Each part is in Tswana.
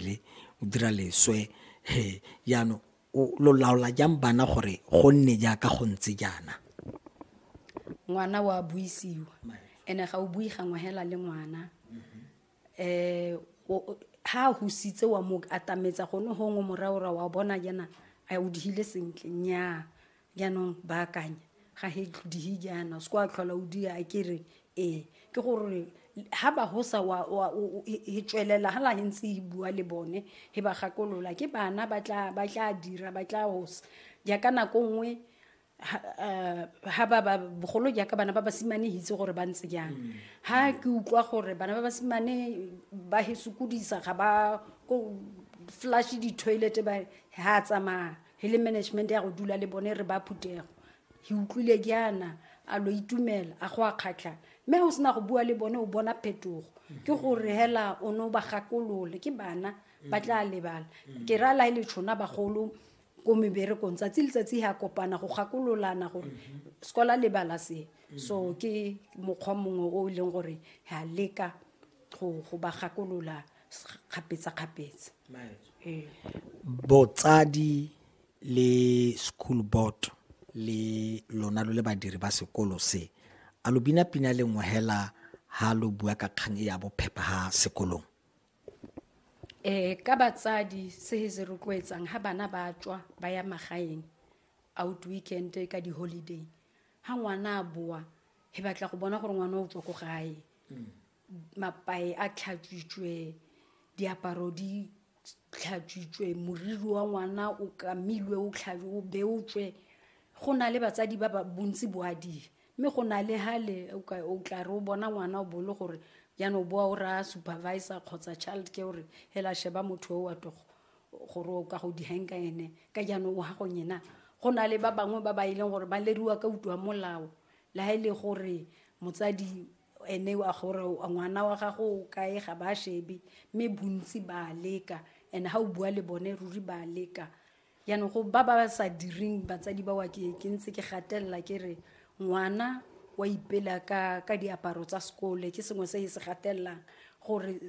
le o dira leswe he jaanong lo laola jang bana gore go nne jaaka go ntse jaana ngwana wa buisiwa ene ga o bui gangwe hela le ngwana um ha a husitse wa mo atametsa gone gongwe moraora wa bona jana a o dihile sentle nyaa jaanong baakanya ga he dihe jaana se ko a tlhola o dia a kere ee ke gore ha ba ho sa wa wa e tswelela ha la he ntse e bua le bone he ba gakolola ke bana ba tla ba tla dira ba tla hosa jaaka nako nngwe Eh, ha ba ba bogolo jaaka bana ba basimane hitse gore ba ntse jang ha ke utlwa gore bana ba basimane ba he sokodisa ga ba ko flash di-toilet ba ha tsamaya e le management ya go dula le bone re ba phutego ke utlwile jaana a lo itumela a go a kgatlha mme ga o sena go bua le bone o bona phetogo ke gore hela o ne o ba gakolole ke bana ba tla lebala ke ra la e le tšhona bagolo ko meberekong tsatsi letsatsi ga kopana go gakololana gore sekola lebala se so ke mokgwa mongwe o e leng gore ga leka go ba gakolola kgapetsa-kgapetsa ee. botsadi le school board le lona lo le badiri ba sekolo se a lo bina pina le nngwe hela ha lo bua ka kgang e ya bophepha ha sekolong eh ka batsadi se se rotloetsang ha bana ba tswa ba ya magaeng out weekend ka di holiday ha ngwana a boa he batla go bona gore ngwana o tswa ko gae mm. mapae a tlhatswitswe diaparo di tlhatswitswe moriri wa ngwana o kamilwe o o beotswe go na le batsadi ba ba bontsi boadile mme go na le hale o tla re o bona ngwana o bole gore jaanong boa o raya supervisor kgotsa child care gore hela sheba motho o wa togo gore o ka go dihang ka ene ka jaanong o ha go nyena go na le ba bangwe ba ba e leng gore ba leriwa ka utlwa molao le ha e le gore motsadi ene a gore ngwana wa gago o kae ga ba shebe mme bontsi ba leka and ga o bua le bone ruri ba leka jaanong go ba ba sa direng batsadi ba wa ke ke ntse ke gatelela ke re ngwana wa ipela ka ka diaparo tsa sekole ke sengwe se e se gatelelang gore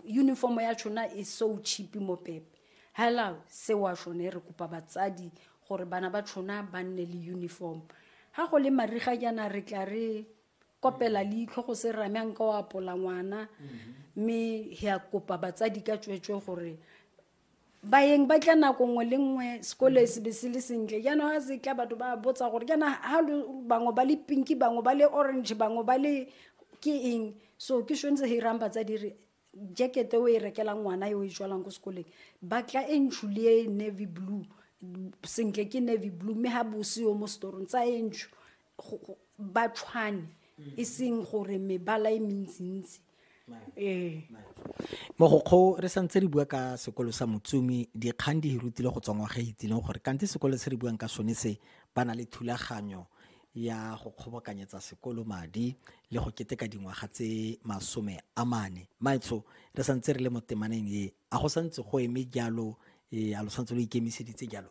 uniform ya tshona e so cheap mo pepe hello se wa shone re kopa batsadi gore bana ba tshona ba nne le uniform ga go le mariga jaana re tla re kopela leitlho go se rame a nka o apola ngwana mme he a kopa batsadi ka tsweetswe gore baeng ba tla nako nngwe le nngwe sekole se be se le sentle jaanong ga se tla batho ba botsa gore jaana ga bangwe ba le pinki bangwe ba le orange bangwe ba le ke eng so ke tshwanetse ge irang batsadi re jacket o e rekelang ngwana yo e jwalang ko sekoleng batla e ntsho le e navy blue sentle ke navy blue mme ga bose yo mo setorong tsa e ntsho ba tshwane e seng gore mebala e mentsintsi ee mogokgo re santse re bua ka sekolo sa motsumi dikgang di hirutile go tswa ngwaga e itsileng gore kante sekolo se re buang ka sone se ba na le thulaganyo ya go kgobokanyetsa sekolo madi le go keteka dingwaga tse masome a mane maetsho re santse re le mo temaneng e a go santse go eme jalo e a lo santse lo ikemiseditse jalo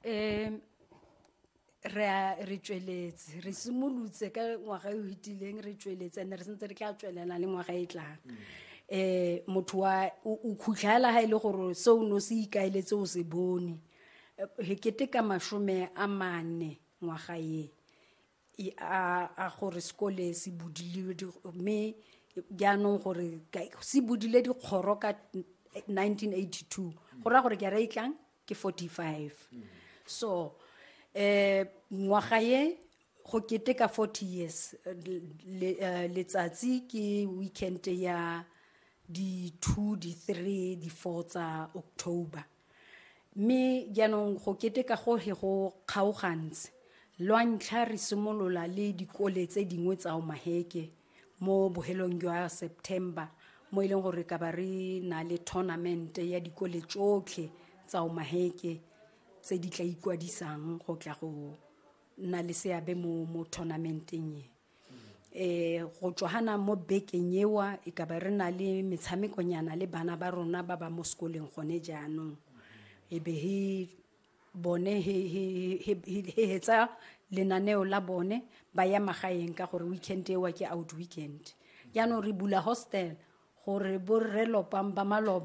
um re a re tsweletse re simolotse ka ngwaga e o fetileng re tsweletse and re sentse re tla tswelela le ngwaga e tlang um motho wa o khutlhela ga e le gore se o ne o se ikaeletse o se bone re keteka masome a mane ngwaga e a gore sekole se budile mme jaanong gore se budile dikgoro ka 1982 go raya gore ke ra itlang ke 45 so um ngwaga ye go keteka 40 years eh, letsatsi ke weekend ya di-two di-three di-four tsa october mme jaanong go keteka go he go kgaogantse lwa ntlha re simolola le dikole tse dingwe tsa omaheke mo bohelong jwa september mo e leng gore ka ba re na le tournament ya dikole tsotlhe tsa omaheke tse di tla ikwadisang go tla go nna le seabe mo mo tournamenteng e eh go tswana mo bekeng ewa e ka ba re na le metshamekonyana le bana ba rona ba ba mo sekoleng gone jaanong e be he bone he he he he- he hetsa lenaneo la bone ba ya magaeng ka gore weekend ewa ke out weekend jaanong re bula hostel gore borre lopang ba maloba